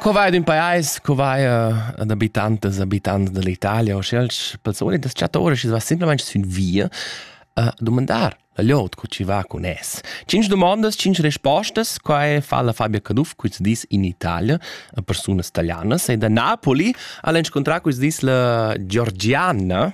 Co vai d'ün pajais, co vai ad abitantas e abitants dall'Italia o sch'els persone das chattore chi va simplamaing sün via a dumandar la liot co chi va cun es. Cinc domandas, cinc respostas, quai fa la Fabia Caduff quist dis in Italia a persunas italianas e da Napoli al han inscontrà quist dis la Georgiana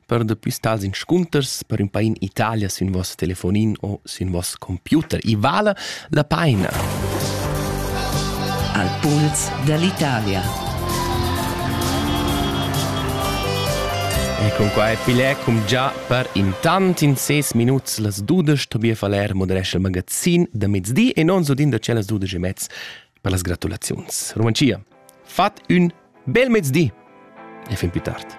per dapi stats inscunters per ün pain Italia sün vos telefonin o sün vos computer. I vala la paina. Al puls dall'Italia. E con qua è Filè cum già per intant in ses minuts las dudesch Tobias Faller moderesce il magazin da mezdi e non so din da c'è las dudesch e mezz per las gratulaziuns. Romancia, fat un bel mezdi e fin più tardi.